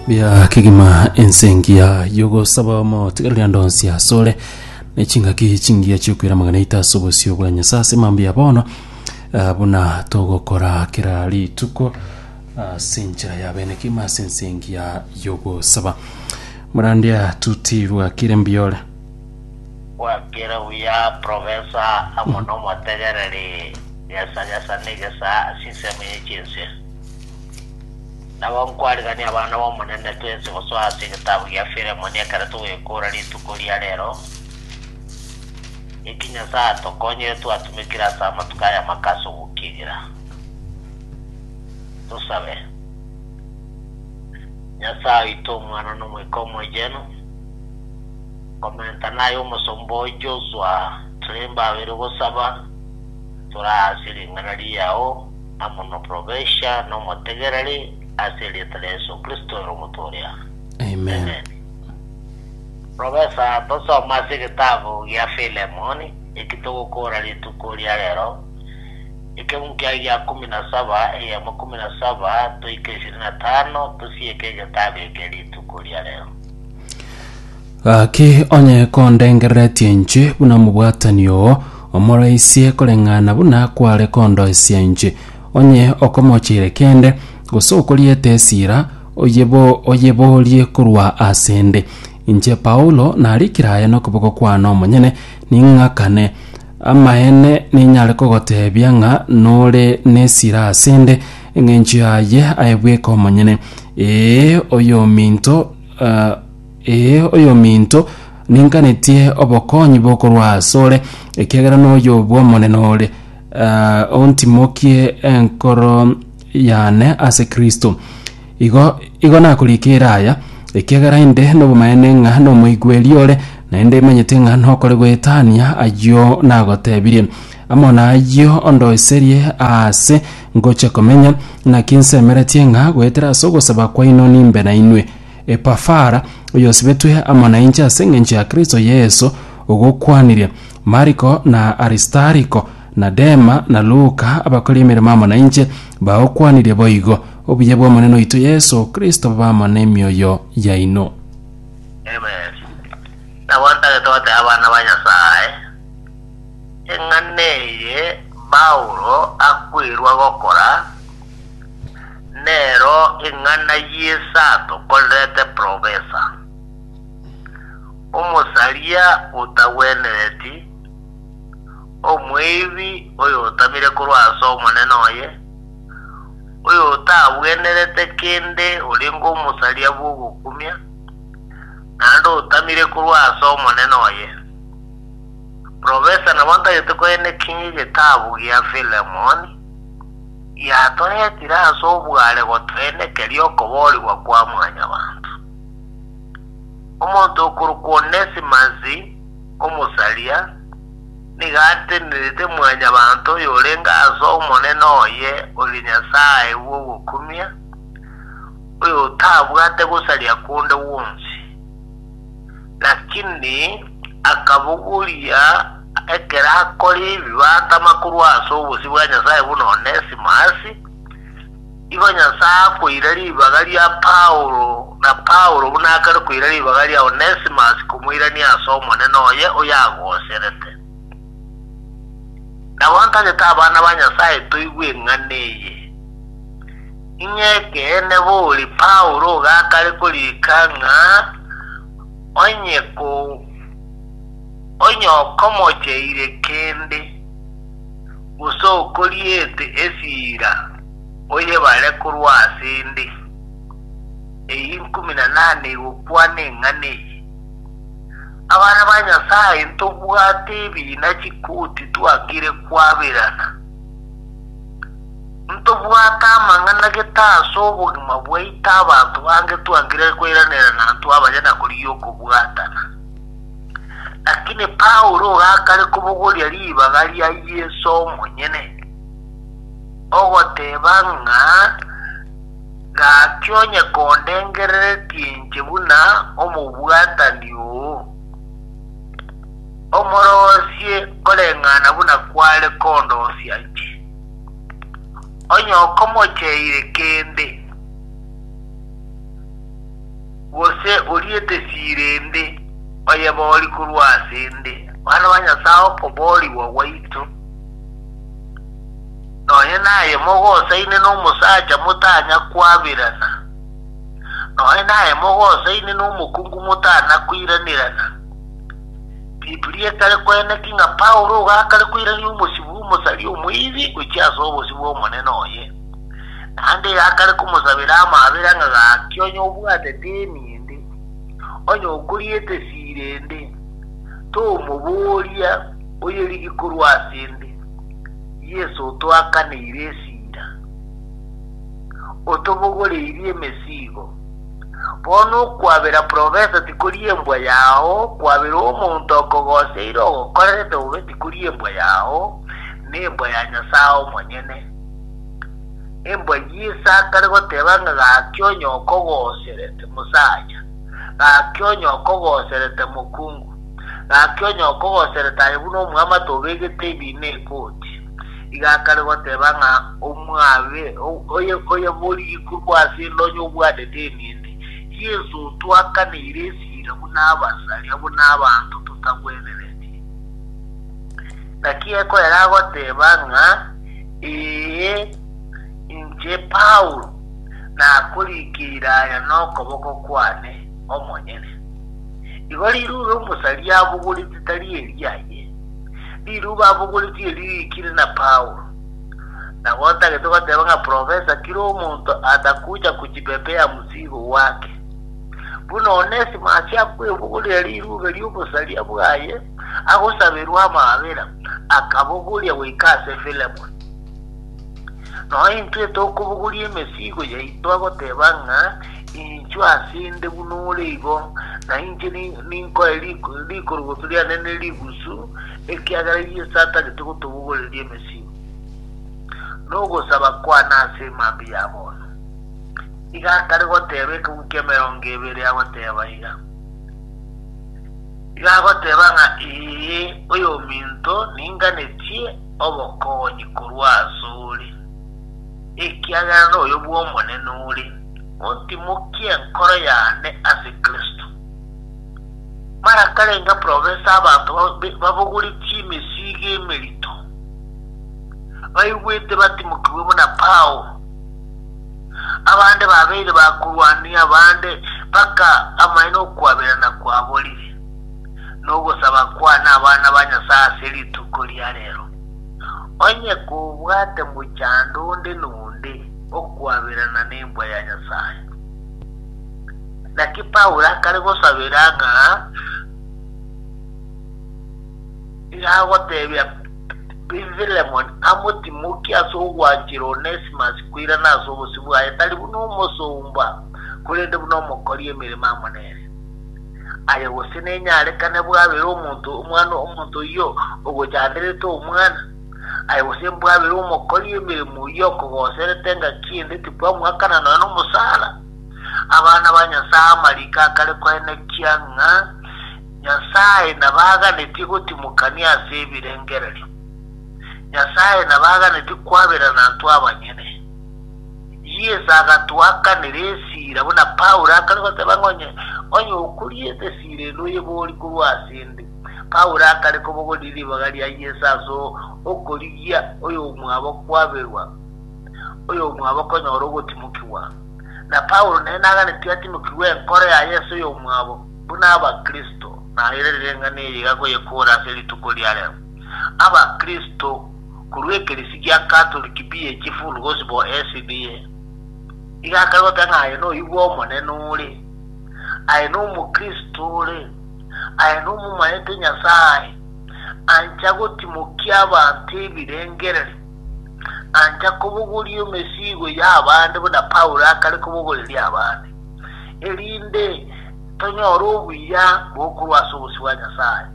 Bia kegima ense engiya y'ogosaba omotiga rende onsi asore ne chingaki chingiya chiokwera amang'ana aito ase obosio bwa Nyasae ase mambia bono ah, buna togokora kera rituko ase enchera ya bene kegima ase ense engiya y'ogosaba morandia tutirwa kire mbiore gwakere buya profesa amo nomotegereri nyasanyasani gesa asisemi ye chinse Nabo nkwarigania abana b'Omonene twensi gosoa ase egetabu gia Filemoni ekero togoyekora rituko ria rero, eki Nyasae atokonyire twatumekire ase amatuko aya amake ase ogokigera. Tosabe. Nyasae oito, Omwana, na Omoika Omoyenu, nkomentana aye omosomba oo Joshua, tore mbabere gosaba, tore ase ring'ana riao, amo noporobesha nomotegereri ase erieta ria Yesu Kristo ere omotooria. Amen. Profesa, tosome ase egetabu gia Filemoni eki togokora rituko ria rero, ekeunkia gia kumi na saba, eyemo kumi na saba toike ishirini na tano, tosieke egetabu eke rituko ria rero. Gaki onye kondengereretie inche buna omobwatani oo, omoreisie koreng'ana buna kware kondoisia inche. Onye okomocheire kende, gose okoriete esira, oyebo oyeboorie korwa ase 'nde. Inche Paulo narikire aya nokoboko kwane omonyene, ning'akane. Amaene ninyare kogoteebia ng'a nore nesira ase 'nde engencho yaye aye bweka omonyene. Ee, oyominto, eh, Ee, oyominto, ninganetie obokonyi bokorwa asore, ekiagera noyo bw'Omonene ore, ah, ontimokie enkoro yane ase Kristo. Igo, igo nakorikire aya, ekiagera inde nobomaene ng'a nomoigweri ore, naende imanyete ng'a nokore goetania ayio nagotebirie. Amo nayio ondoiserie aase ngochia komenya, naki nsemeretie ng'a goetera ase ogosaba kwaino nimbe nainwe. Epafara, oyosibetwe amo nainche ase engencho ya Kristo Yeso, ogokwanirie. Mariko, na Aristariko, na Dema, na Luka, abakori emeremo amo nainche, bagokwanirie boigo. Obuya bw'Omonene oito Yeso Kristo bobe amo nemioyo yaino. Amen. Nabo ntagete goteba abana ba Nyasae, eng'ana eye Paulo akweirwe gokora, Nero ing'ana y'esato korerete profesa, omosaria otagwenereti, omweibi oyotamire korwa ase omonene oye, oyotagwenerete kende orenge omosaria bw'ogokumia, naende otamire korwa ase omonene oye. Profesa nabo ntagete koenekia ng'a egetabu gia Filemoni. yatoetire ase obware gotoenekeria okoboorigwa kwa Mwanyabaanto. Omonto okorokwa Onesimasi, omosaria, nigo atenerete Mwanyabaanto oyorenge ase Omonene oye oria Nyasae bw'ogokumia, oyotabwate gosaria konde gwonsi. Lakini akabogoria ekero akore ebi batama korwa ase obosio bwa Nyasae buna Onesimus, igo Nyasae akoira ribaga ria Paulo, na Paulo buna akare koira ribaga ria Onesimus komoirania ase Omonene oye oyo agoserete. Nabo ntagete abana ba Nyasae toigwe eng'ana eye, ing'ee ekeene bori Paulo ogakare korika ng'a onye onye okomocheire kende, gose okoriete esira oyebare korwa ase ende. Eyio ikumi na nane igokwana eng'ana eye. Abana ba Nyasae ntobwate ebiina chikoti twakire kwaberana. Ntobwate amang'ana gete ase obogima bwaito abanto bange twangire koiranera nantwe abaye na korigia okobwatana. Lakini Paulo gakare kobogoria ribaga ria Yeso omonyene, ogoteba ng'a, Gaki onye kondengereretie inche buna omobwatani oo, omorosie koreng'ana buna kware kondosia inche. Onye okomocheire kende, gose oriete siira ende, oyeborie korwa asende, bana ba Nyasae okoboorigwa gwaito. Nonya naye mogosaine nomosacha motanya kwabirana, nonya naye mogosaine nomokungu motana koiranirana. Biblia ekare koeneki ng'a Paulo igo akare koirania omosibwa omosari omoibi gochia ase obosio bw'Omonene oye. Naende igo akare komosabera amabera ng'a gaki onye obwate deni ende, onye okoriete siira ende, tomoboria oyerigi korwa ase ende. Yeso otwakaneire esira, otobogoreirie emesigo. Bono okwabera profesa tikori embwa yao, kwabera omonto okogoseire ogokorerete bobe tikori embwa yao, nembwa ya Nyasae omonyene. Embwa Yeso akare goteba ng'a gaki onye okogoserete, mosaya, gaki onye okogoserete, mokungu. Gaki onye okogosere taye buna omwamato obegete ebiina egoti, iga akare goteba ng'a omwabe oyebori ikurwa ase endonyo obwanete emende, iye ense otwakaneire esira buna abasaria, buna abanto totagwenereti. Naki ekoera agoteba ng'a, Ee, inche Paulo, nakorikeire aya nokoboko kwane omonyene. Igo riruube omosa riabogoretie tari eriaye, riruube abogoretie eri riikire na Paulo. Nabo otagete goteba ng'a profesa kera omonto atakucha kochipepea msigo wake. Buna Onesimasi akwebogoria riruube ri'obosaria bwaye agosaberwa amaabera, akabogoria goika ase Filemoni. Nointwe tokobogoria emesigo yaito agoteba ng'a Inchwa ase 'nde buna ore igo, na inche ninkoe rikorogoto riane ne rigusu, ekiagera Yeso atagete gotobogoreria emesibwa, na ogosaba kwane ase emambia ya bono. Iga akare goteba ekegwi ki'emerongo ebere agoteba iga, Iga agoteba ng'a ee, oyominto, ninganetie obokonyi korwa asore, ekiagera noyo bw'Omonene ore. Otimokie enkoro yane ase Kristo. Mara karenge profesa abanto babogore chimesigo emerito, baigwete batimokigwe buna Paulo. Abande babeire ba korwania abande mpaka amaene okwaberana kwaborire, na ogosaba kwane abana ba Nyasae ase rituko ria rero. Onye kobwate mochando onde na onde, Okwaberana nembwa ya Nyasae. Naki Paulo akare gosabera ng'a agotebia Filemoni amotimokie ase ogwanchera Onesimasi koirana ase obosio bwaye, tari buna omosomba, korende buna omokori emeremo amo nere. Aye gose nenyarekane bwabere omonto, omwana omonto oyio ogochanderete omwana. Aye gose mbwabere omokori emeremo eyio okogoserete engaki ende tikwamwakana nonya nomosara? Abana ba Nyasae amariko akare koenekia ng'a Nyasae nabaganetie gotimokania ase ebirengererio. Nyasae nabaganetie kwaberana intwe abanyene. Yeso agatoakanera esira buna Paulo akare goteba ng'a onye okoriete esira ende oyebori korwa ase 'nde. Paulo akare kobogoria ribaga ria Yeso ase okorigia oyomwabo kwaberwa, oyomwabo konyora ogotimokigwa. Na Paulo nere naganetie atimokigwe enkoro ya Yeso oyomwabo buna Abakristo. Na ere rireng'ana eye igakoyekora ase rituko ria reo. Abakristo korwa ekeresi gia Katoliki Beautiful Gospel, SDA, igakare goteba ng'a aye noyio bw'Omonene ore. Aye nomokristo ore. Aye nomomaete Nyasae, ancha gotimokia abanto ebirengererio, ancha kobogoria emesigo y'abande buna Paulo akare kobogoreria abande, erinde tonyore obuya bokorwa ase obosio bwa Nyasae.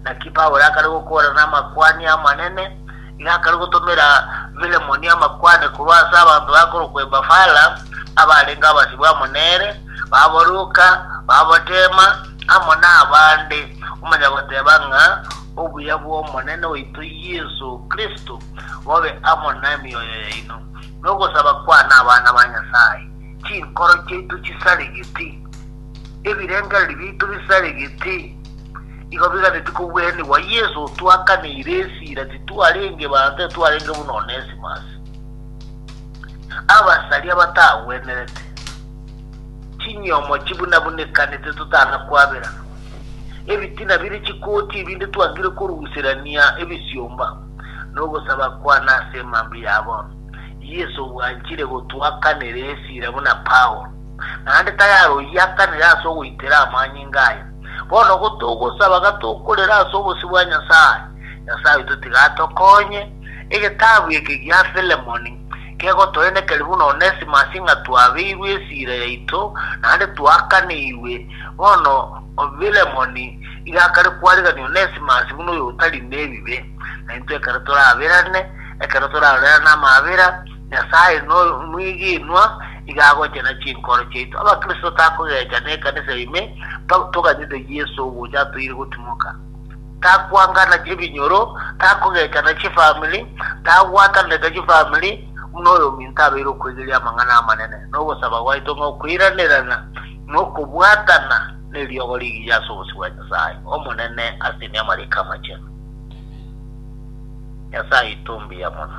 Naki Paulo akare gokoorana namakuani amanene, Nakare gotomera Filemoni amakwane korwa ase abanto bakorokwa Epafara, abarenge abasibwa amo nere, babo Luka, babo Dema, amo nabande, omonyagoteba ng'a obuya bw'Omonene oito Yeso Kristo bobe amo nemioyo yaino. Nogosaba kwane abana ba Nyasae. Chinkoro chiaito chisare gete. Ebirengererio biaito bisare gete. Igo biganetie kogwenigwa Yeso twakaneire esira titwarenge baanto twarenge buna Onesimus. Abasaria batagwenerete, chinyomo chibunabunekanete totana kwaberana, ebitina bire chikoti ebinde twangire koruserania ebisiomba, nogosaba kwane ase emambia yabo, Yeso bwanchire gotwakanera esira buna Paulo, naende tayari oyio akanire ase ogoitera amanyinga aye. Bono ogo togosaba gatokorera ase obosio bwa Nyasae, Nyasae oito tiga atokonye. Egetabu eke gia Filemoni kegotoenekeria buna Onesimasi ng'a twabeirwe esiira yaito naende twaakanigwe. Bono Filemoni iga akare kwarigania Onesimasi buna oyo otari nebibe, na intwe ekero toraberane, ekero torarorerane amaabera, Nyasae nomwegenwa, iga agochena chinkoro chiaito. Abakristo takogecha nekanisa ime toganyete Yeso ogocha atoire gotimoka. Takwangana ebinyoro, takogechana chifamiri, tagwatanete chifamiri buna oyominto abeire okwegeria amang'ana amanene nogosaba gwaito ng'a okoiranerana nokobwatana neriogo rigiya ase obosio bwa Nyasae Omonene ase Emeamariko Amachenu. Nyasae aito mbuya mono.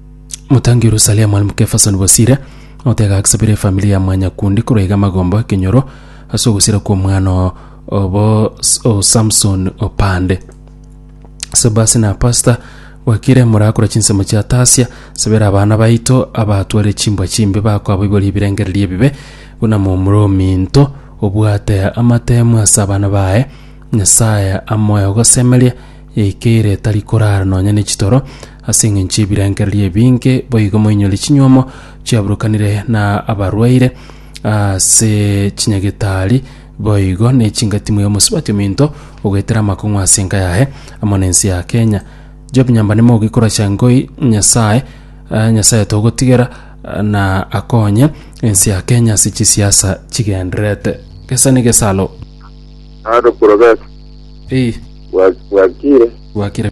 Motangi Yerusalemu Mwalimu Kefason Bosire otega agsabire efamili ya Mwanyakundi korwa iga magombo ekenyoro ase ogosira kwa omwana o- obo S- o Samson Opande Sebasi na Pasta Wakire morakora chinsemo chia Tasia sabera abana baito abatware chimbwa chimbe bakoaboiboria ebirengererio ebibe buna momura ominto obwate amatemu ase abana baye Nyasaye amoe ogosemeria ekeire tari korara nonya ne chitoro Ase engencho y'ebirengererio ebinge boigo moinyore chinyuomo chiaburukanire na abarwaire ase chinyagitari boigo ne chingati moyo mosubati ominto ogoetera amakong'u ase enka yaye amo na ense ya Kenya. Job nyamba ne mogi koracha ngoi Nyasaye eh, Nyasaye togotigera eh, na akonye ense ya Kenya ase chisiasa chigendererete. Gesa ne gesalo. Aro Profesa, Ei, bwa- bwakire. bwakire.